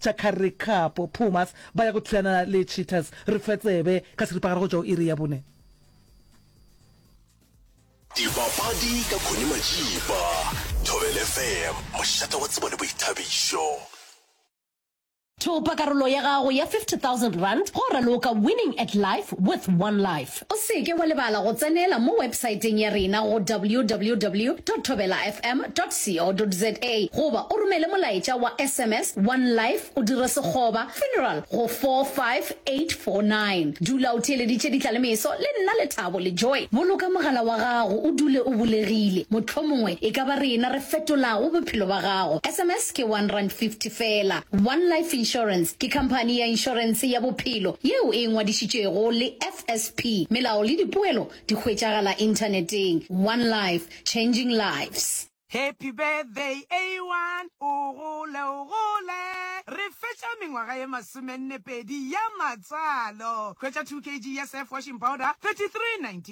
tša Currie Cup, Pumas ba ya go thulana le Cheetahs. Re fe tsebe ka seripagare go tšwa go iri ya bone. Dipapadi ka Connie Majiba, Thobela FM, mošate wa tsebo le boithabišo. Thopa karolo ya gago ya R50,000 go raloka Winning at Life with OneLife. O se ke wa lebala go tsenela mo websaeteng ya rena go www.thobelafm.co.za goba o romele molaetša wa sms wa nlife o dire sekgoba funeral go 45849. Dula o theeleditše ditla le meso le nna Lethabo le Joy. Boloka mogala wa gago o dule o bulegile, mohlomongwe e ka ba rena re fetolago bophelo ba gago. Sms. insurance ke one rand fifty fela. One Life Insurance ke khamphani ya inšorense ya bophelo yeo e ngwadišitšwego le FSP. Melao le dipoelo di hwetšagala inthaneteng. One Life, changing lives. Happy birthday A1 o gole o gole re fetša mengwaga ye masomenne pedi ya matsalo hwetša 2 kg ya surf washing powder 33 19.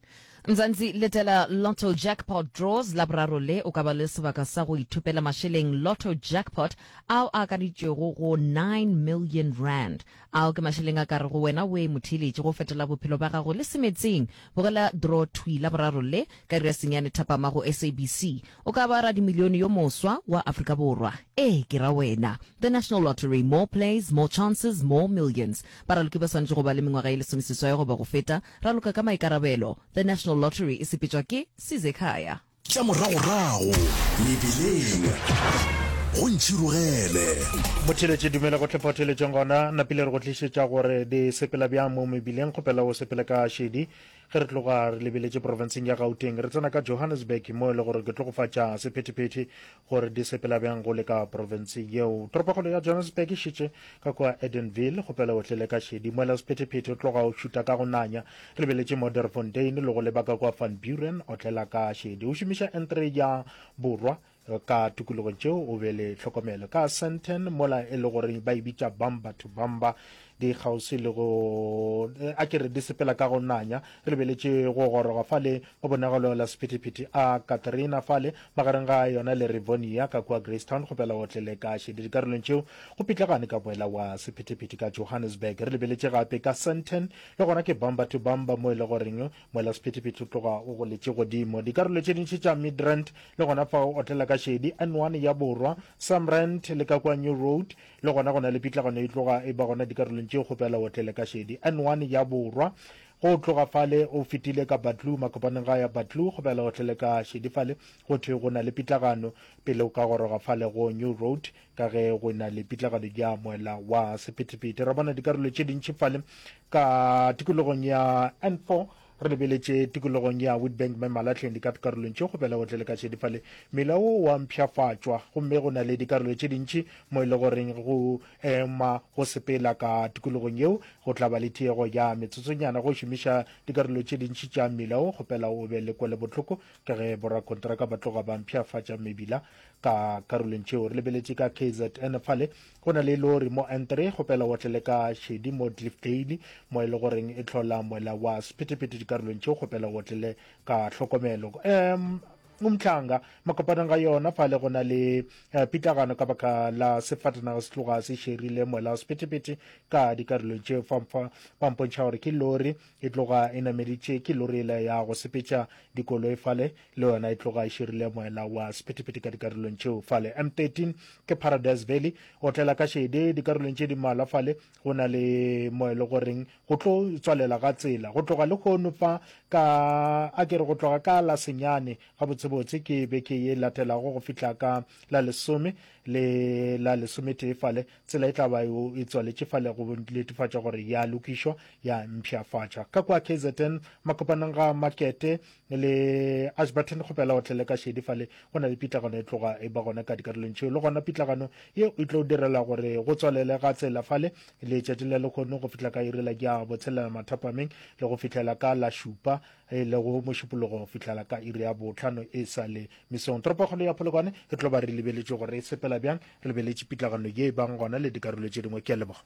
Mzansi Letela Lotto Jackpot Draws Laboraro le o ka ba le sebaka sa go ithopela mašeleng Lotto Jackpot ao a akaditšwego go 9 million rand. Ao ke mašeleng a ka rego wena oe motheeletše go fetola bophelo ba gago le semetseng. Bogela draw thwi Laboraro le ka iri ya senyane thapama go SABC. O ka ba radimilione yo moswa wa Afrika Borwa. Ee, ke ra wena. The National Lottery, More plays, more chances, more millions. Baraloki ba swanetše go ba le mengwaga e lesomeseswai goba go feta. Raloka ka maikarabelo, The National Lottery e sepetšwa ke Size Khaya. Tša moragorago mebileng go ntšhirogele. Botheletše dumela go tle photheletšong gona napile re go tlišetša gore di sepela bjang mo mebileng kgopela o sepele ka šedi ge re tloga re lebeletše profenseng ya gauteng re tsena ka johannesburg mo e le gore ke tlogofatša sephetephete gore di sepela bjang go le ka profense yeo. Toropokgolo ya Johannesburg e šetše ka kua Edenville, kgopela o tle le ka šedi. Moela Sephetephete o tloga o šuta ka go nanya, re lebeletše Moderfontein le go leba ka kua Van Buren, otlela ka šedi. O šomiša N3 ya Borwa ka tukulogong tšeo o be le tlhokomelo. Ka Sandton, mola e le gore ba e bitša Bamba to Bamba, di kgauswi le go a ke re di sepela ka go nanya re lebeletše go goroga fale go bonagalo la sephetephete a katrina fale magareng ga yona le rivonia ka kua gracetown go pela otlele ka šedi dikarolong tšeo go pitlagane ka boela wa sephetephete ka johannesburg re lebeletše gape ka santen le gona ke bamba to bamba mo e le goreng moela sephetephete o tloga o goletše godimo dikarolo tše dintši tša midrand le gona fa o otlela ka šedi n1 ya borwa samrand le ka kua new road Le gona go na le pitlagano e tloga e ba gona dikarolong tše go pela otlele ka šedi N1 ya borwa. Go tloga fale o fetile ka Batlou makopaneng ga ya Batlou go pela otlele ka šedi fale go thwe go na le pitlagano pele o ka goroga fale go New Road ka ge go na le pitlagano ya moela wa sephethephethe. Ra bona dikarolo tše dintši fale ka tikologong ya N4 Re lebeletše tikologong ya Witbank me Malatlheng di ka dikarolong tše go bela go tlele ka šedifale mela wo wa mpšhafatšwa gomme go na le dikarolo tše dintši mo e le goreng go ema go sepela ka tikologong yeo go tla ba le tiego ya metsotsonyana go šomiša dikarolo tše dintši tša mmila wo kgopela o be le kwele bohloko ka ge borakontraka ba tloga ba mpšhafatša mebila ka karolong tšeo re lebeletše ka kzn fale Go na le lori mo N three go pela o tlele ka šedi mo Dlifdale mo e le goreng e tlhola moela wa Sephethephethe dikarolong tšeo go pela o tlele ka tlhokomelo. Um, Umhlanga, makopanang ga yona fale go na le eh, pitlagano ka baka la sefatanaga se tloga se šerile moela wa Sephethephethe ka dikarolong tšeo fa fa ba mpontšha gore ke lori e tloga e nameditše ke lori ela ya go sepetša dikoloi fale le yona e tloga e širile moela wa sephethephethe ka dikarolong tšeo fale. M13 ke Paradise Valley, o tlela ka šede dikarolong tše di mmalwa fale, go na le mo e le goreng go tlo tswalela ga tsela go tloga le hono fa ka a ke re go tloga ka la senyane gabotsebotse ke beke ye latelago go fihla ka la lesome le la lesometee fale tsela e tla ba e tswaletše fale go netefatša gore ya lokišwa ya mpšhafatšwa ka kwa kzn makopaneng ga makete ne le ashburton re kgopela o tlele ka šedi fale go na le pitlagano e tloga e ba gona ka dikarolong tšeo le gona pitlagano ye e tlo direla gore go tswalele ga tsela fale letšatši la lekgono go fihla ka irela ke ya botshelela mathapameng le go fihlela ka la šupa e le go mošupologo go fihlela ka iri ya botlhano e sa le mesong toropokgolo ya polokwane e tlo ba re lebeletše gore e sepela bjang re lebeletše pitlagano ye e bang gona le dikarolo tše dingwe ke a leboga